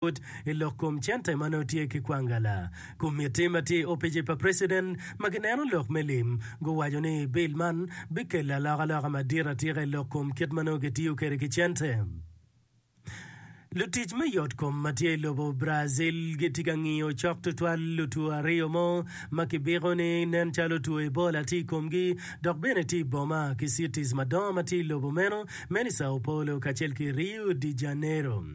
pwod i lok kom cente ma nongo tye ki kwangala. Komitti ma tye i opici pa preciden ma gineno lok me lim guwaco ni bil man bikelo alokaloka madit atika i lok kom kit ma nongo kitiyo kwede ki cente. Lutic me yot kom ma tye i lobo Brazil gitye ka ngiyo cok tutwal lutwo aryo mo ma kibiko ni nen calo two Ebola tye i komgi dok bene tye i boma ki cities madongo ma tye i lobo meno me ni Sao Paulo kacel ki Rio de Janeiro.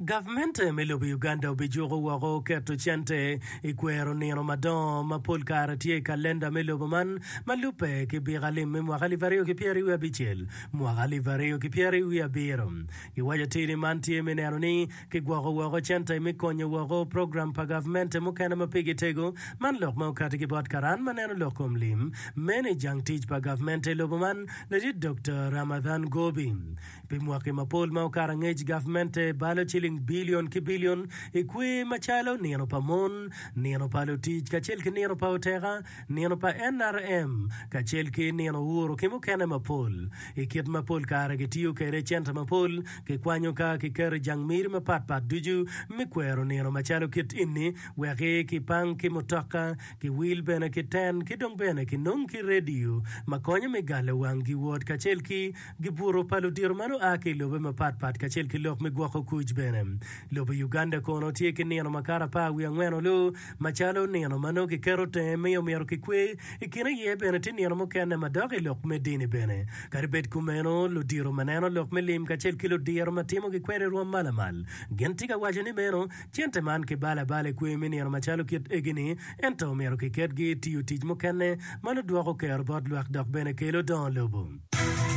Gavment me lobo Uganda obijuko woko keto cente i kwero nino madongo ma pol kare tye i kalenda me lobo man ma lubbe ki Bika Lim me mwaka alip aryo ki pyeri wiye abicel, mwaka alip aryo ki pyeri wiye abiro. Giwaco atir ni man tye me neno ni Kigwoko woko cente me konyo woko program pa gavmente mukene ma pigi tego, man lok ma okati ki bot karan ma neno lok kom lim, mene jang tic pa gavmente i lobo man, Ladit Dokta Ramadhan Gobi. Pi mwaki mapol ma okato angec gavmente balo ciling bilion ki bilion i kwer macalo nino pa mon, nino pa lutic kacel ki nino pa oteka, Nino pa NRM kacel ki nino ur ki mukene mapol, i kit ma pol kare kitiyo kwede i center mapol, kikwanyo ka kiketo i jang miri mapat pat ducu me kwero nino macalo kit ini, weki kipang ki mutoka, ki wil bene ki ten ki dong bene kinong ki radio ma konyo me galo wang giwot kacel ki Gibuto pa ludito man oa ki i lobe mapatpat kacel ki lok me gwoko kuc bene. Lobo Uganda kono tye ki nino makato apar wiye angwen olu macalo nino ma nongo kiketo tenge miyo myero kikwe. I kine iye bene tye nino mukene madok i lok me dini bene. Kadi bed kumeno, ludito ma neno lok me lim kacel ki ludiro ma timo gikwena i rwom ma lamal gin tye ka waco ni meno cente man kibalo abala i kwe me nino macalo kit egi-ni ento omyero kiketgi i tiyo tic mukene ma nudwoko kero bot lwak dok bene kelo dongo lobo.